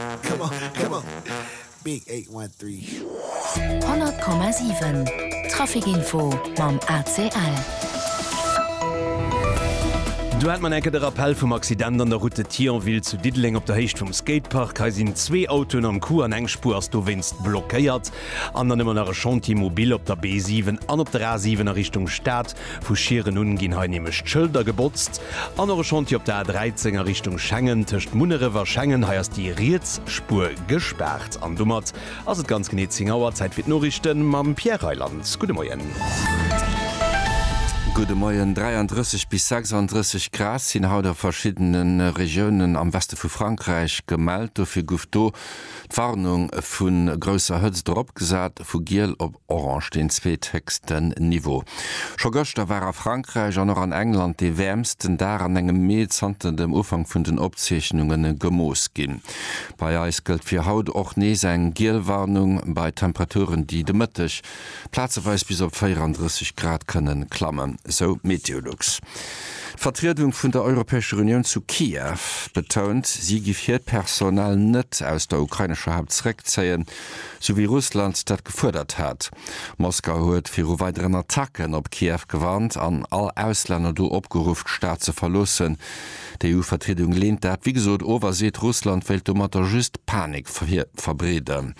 100,7 Trafikinfo mam ACL. Do hat man eng Kéier de Rappell vum Accident an der Route de Thionville zu Diddeleng op der Héicht vum Skatepark. Hei sinn zwee Autoen am Coup an eng Spuer ass dowéinst blockéiert. An dann hu mer nach e Chantier mobile op der B7 an op der A7 a Richtung Stad. Vu Schieren un ginn hei nämlech d'Schëlder gebotzt. An och e Chantier op der A 13 a Richtung Schengen, tëscht Munneref a Schengen. Hei ass déi riets Spuer gespaart. An domat ass et ganz genee 10 Auer. Zäit fir d'Noriichte mam Pierre Reyland. Gudde Moien. Gudde Moien. 33 bis 36 Grad sinn haut a verschiddene Regiounen am Weste vu Frankräich gemellt. Dofir guff do d'Warnung vu grousser Hëtzt eropgesat, vu giel op. Orange deen zweethëchsten Niveau. Scho gëschter war a Frankräich an och an England dee wäermsten Dag an engem Mee zanter dem Ufank vun den Opzeechnunge gemooss ginn. Bei eis gëllt fir haut och nees eng giel Warnung bei Temperaturen, déi de Mëtteg plazeweis bis op 34 Grad kënnen klammen, sou Meteolux. D'Vertriedung vun der Europäescher Unioun zu Kiew betount, si giff hiert Personal net aus der ukrainescher Haupt zeréckzéien. sou wéi Russland dat gefuerdert hat. Moskau huet viru weideren Attacken op Kiew gewarnt an all Auslänner do opgeruff, d'Stad ze verloossen. D'EU-Vertriedung leent dat wéi gesot of a seet, Russland wéilt domatter just Panik verbreeden.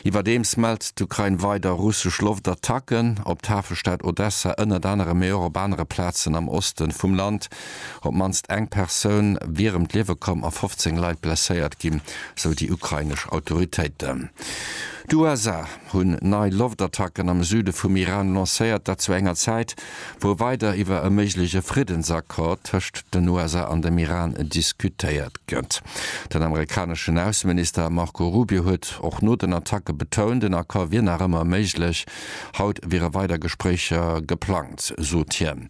Iwwerdeems mellt d'Ukrain weider russesch Loftattacken op d'Hafestad Odessa, ënnert anerem, mee och op anere Plazen am Oste vum Land. Op d'mannst eng Persoun wier ëm d'Liewe komm a 15 Leit blesséiert ginn, sou déi ukrainesch Autoritéiten. D'USA hunn nei Loftattacken am Süde vum Iran lancéiert, dat zu enger Zäit, wou weider iwwer e méigleche Friddensaccord tëscht den USA an dem Iran diskutéiert gëtt. Den amerikaneschen Ausseminister Marco Rubio huet och no den Attacke betount, en Accord wier nach ëmmer méiglech. Haut wiere weider Gespréicher geplangt, sot hien.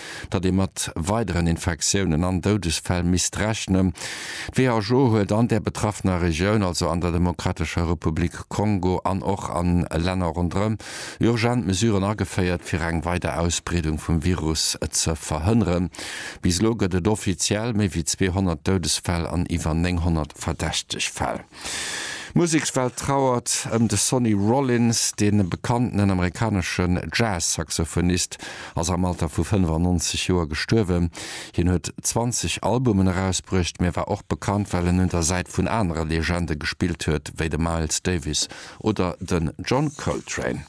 datt ee mat weideren Infektiounen an Doudesfäll misst rechnen. D'WHO huet an där betraffener Regioun, also an der Demokratescher Republik Kongo an och a Länner ronderëm, urgent Mesuren ageféiert, fir eng weider Ausbreedung vum Virus ze verhënneren. Bis elo gëtt et offiziell méi wéi 200 Doudesfäll an iwwer 900 verdächteg Fäll. D'Musekswelt trauert ëm de Sonny Rollins. De bekannten amerikaneschen Jazz-Saxophonist ass am Alter vu 95 Joer gestuerwen. Hien huet 20 Albumen erausbruecht, mee war och bekannt, well en un der Säit vun anere Legende gespillt huet, wéi de Miles Davis oder den John Coltrane.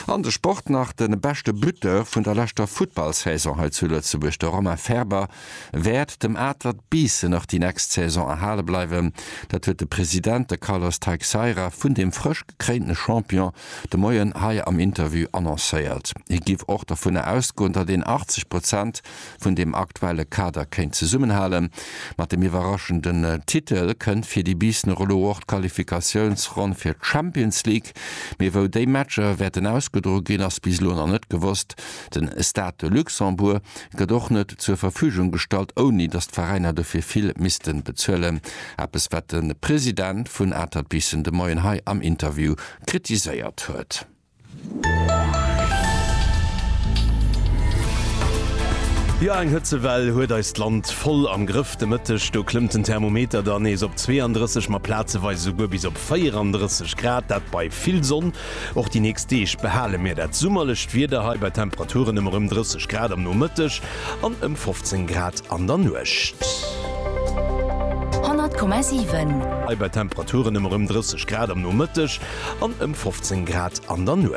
An de Sport nach, De beschte Buteur vun der leschter Futtballsaison hei zu Lëtzebuerg, de Romain Faerber, wäert dem Atert Biissen och déi nächst Saison erhale bleiwen. Dat huet de President, de Carlos Teixeira, vun deem frësch gekréinten Champion de Moien hei am Interview annoncéiert. Hie giff och dovunner ausgoen, datt een 80 Prozent vun deem aktuelle Kader kéint zesummenhalen. Mat dem iwwerraschenden Titel kënnt fir déi Biissener elo och d'Qualifikatiounsronn fir d'Champions League. Mee wou déi Matcher wäerten ausgedroe ginn, ass bis elo nach net gewosst. Den Stade de Luxembourg gëtt och net zur Verfügung gestallt, ouni datt d'Veräiner dofir vill missten bezuelen. Eppes wat de President vun Atert Biissen de Moien hei am Interview kritiséiert huet. Jo, eng Hëtzewell huet eist Land voll am Grëff. De Mëtteg do klëmmt den Thermometer dann nees op 32, ma plazeweis esouguer bis op op 34 Grad, dat bei vill Sonn. Och déi nächst Deeg behale mir dat summerlecht Wieder hei bei Temperaturen ëm erëm 30 Grad am Nomëtteg an ëm 15 Grad an der Nuecht. 100,7. Hei bei Temperaturen ëm erëm 30 Grad am Nomëtteg an ëm 15 Grad an der Nuecht.